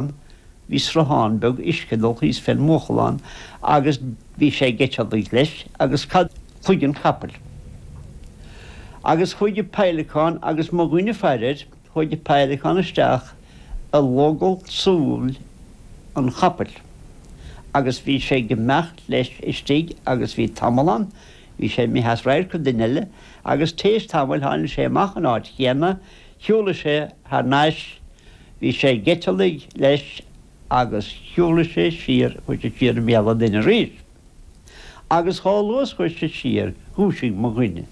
ann. Bhí sruthán beag uisce ag dul thíos fén mbuachalán agus bhí sé ag eiteallaigh leis agus cloigeann capaill. Agus chuaigh an peidhleacán agus mo dhuine ag faire air, chuaigh an peidhleacán isteach i logall súl an chapaill agus bhí sé ag imeacht leis istigh agus bhí tamall ann, bhí sé imithe as radharc an duine eile agus t'éis tamaill tháinig sé amach an áit chéanna, shiúlaigh sé thar n-ais, Bhí sé ag eiteallaigh leis agus shiúlaigh sé siar, chuaigh sé siar i mbéal an duine arís. Agus chomh luath is chuaigh sé siar, dhúisigh mo dhuine.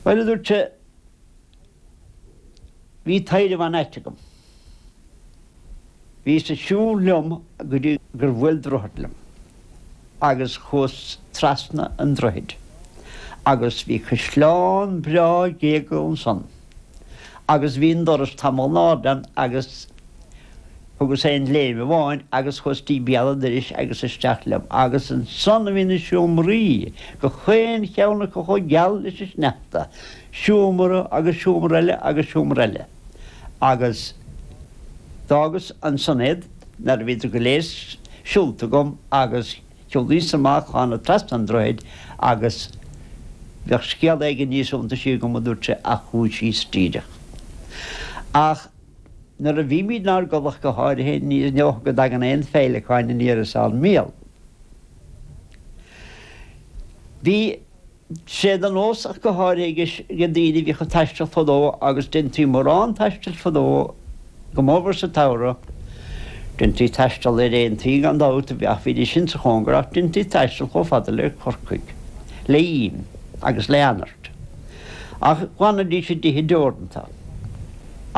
Bhuel, a dúirt sé, bhí taidhreamh an-ait agam. Bhíos ag siúl liom go dtí gur bhuail droichead liom. agus chuas trasna an droichid agus bhí caisleán breá gléigeal ansan agus bhí an doras tamall in airde ann agus thugas aon léim amháin agus chuas dtí béal an doiris agus isteach liom agus ansan a bhí na seomraí, gach aon cheann acu chomh geal leis an sneachta, seomra agus seomra eile agus seomra eile agus d'fhágas ansan iad. Nuair a bhíodar go léir siúlta agam agus shiúlaíos amach thána trasna an droichid agus bheadh scéal éigin níos iontaisí agam, a dúirt sé ach dhúisíos díreach. Ach nuair a bhímid inár gcodladh ach go háirithe ní dócha go dtagann aon phéileacáin aniar as ár mbéal. Bhí. sé de nós ach go háirithe ag daoine a bhíodh ag taisteal fadó agus deintí mórán taistil fadó go mór mór sa tsamhradh. Deintí taisteal ar aontaí gan dabht ach bhí sé sin sa chóngar ach deintí taisteal chomh fada le Corcaigh le im agus le anairt ach d'fhanaidís i dtithe deoranta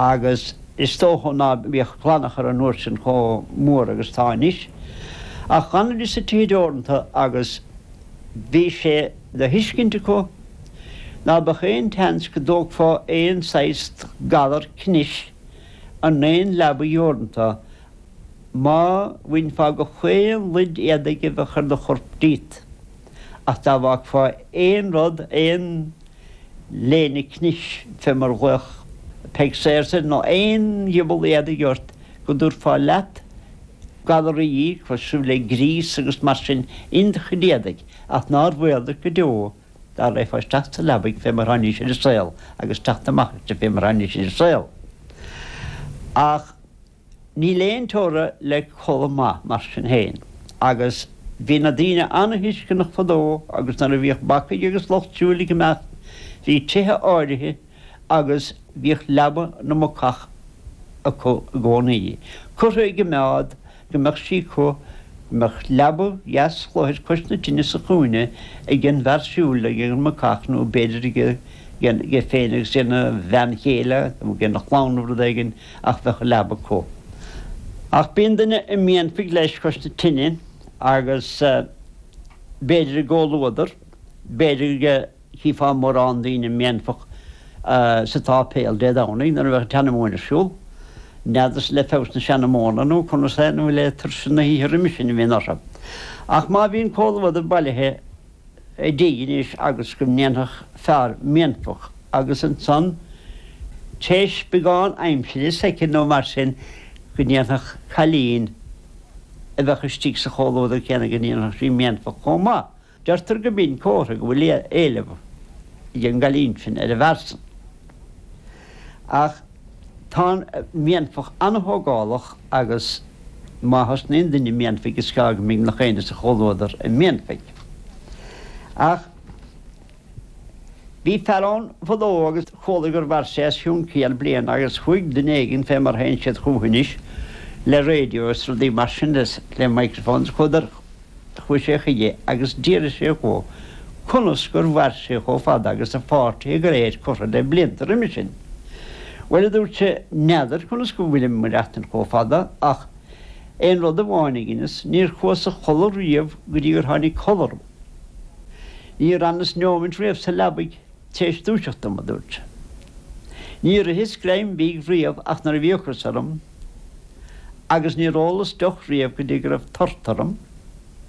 agus is dócha ná bíodh glanachar an uair sin chomh mór agus atá anois ach d'fhanaidís i dtithe deoranta agus Bhí sé le thuiscint acu ná beadh aon tseans go dtógfá aon saghas galar cnis in aon leaba dheoranta má bhainfeá gach aon luid éadaigh a bhí ar do chorp díot, ach dá bhfágfá aon rud, aon léine cnis fé mar a ghlaodh Peig Sayers air nó aon ghiobal éadaigh ort, go dtabharfá leat galaraí cosúil le gríos agus mar sin in do chuid éadaigh, ach nár bhaol duit go deo dá raghfá isteach sa leabaidh fé mar thánaís ar an saol agus teacht amach aisti fé mar thánaís ar an saol. Ach níl aon teora le codladh maith, mar sin féin, agus bhí na daoine an-thuisceanach fadó agus nuair a bhíodh bacaigh agus lucht siúil ag imeacht bhí tithe áirithe, agus bhíodh leaba na mbacach acu i gcónaí, curtha i gcoimeád go mbeadh sí acu, go mbeadh leaba dheas chluthar cois na tine sa chúinne ag an bhfear siúil ag an mbacach nó b'fhéidir aige féin agus aigena bhean chéile nó aigena chlann nó rud éigin ach bheadh a leaba acu. Ach bíonn duine ag méanfaigh leis cois na tine agus b'fhéidir i gcomhluadar, b'fhéidir go. chífeá mórán daoine ag méanfach sa tsáipéal Dé Domhnaigh nuair a bheadh an tseanamóin ar siúl. N'fheadar is le feabhas na seanamóna nó conas é, nó le tuirse na hoíche roimis sin a bhíonn orthu. Ach má bhíonn comhluadar bailithe i dtigh anois agus go ndéanfadh fear méanfach agus ansan théis beagán aimsire, soicind nó mar sin, go ndéanfadh cailín a bheadh istigh sa chomhluadar céanna, go ndéanfadh sí méanfach chomh maith. Deirtear go mbíonn comhartha go bhfuil éileamh ag an gcailín sin ar an bhfear san. Ach tá an mhéanfach an-thógálach agus má thosnaíonn duine ag méanfaigh is gearr go mbíonn gach éinne sa chomhluadar ag méanfaigh. Ach bhí fear ann fadó agus chualadh gur mhair sé os cionn céad bliain agus chuaigh duine éigin fé mar théann siad chucu anois le radio is rudaí mar sin is le microphones chuadar Chuaidh sé chuige agus d'fhiafraigh sé dhó conus gur mhair sé chomh fada agus a pháirtithe go léir curtha le blianta roimis sin. Bhuel, a dúirt sé, n'fheadar conas go bhfuilim ag maireachtaint chomh fada ach aon rud amháin a dheineas, níor chuas a chodladh riamh go dtí gur tháinig codladh orm. Níor fhanas neómaint riamh sa leabaidh t'réis dúiseacht dom, a dúirt sé. Níor itheas greim bídh riamh ach nuair a bhí ocras orm. agus níor ólas deoch riamh go dtí go raibh tart orm.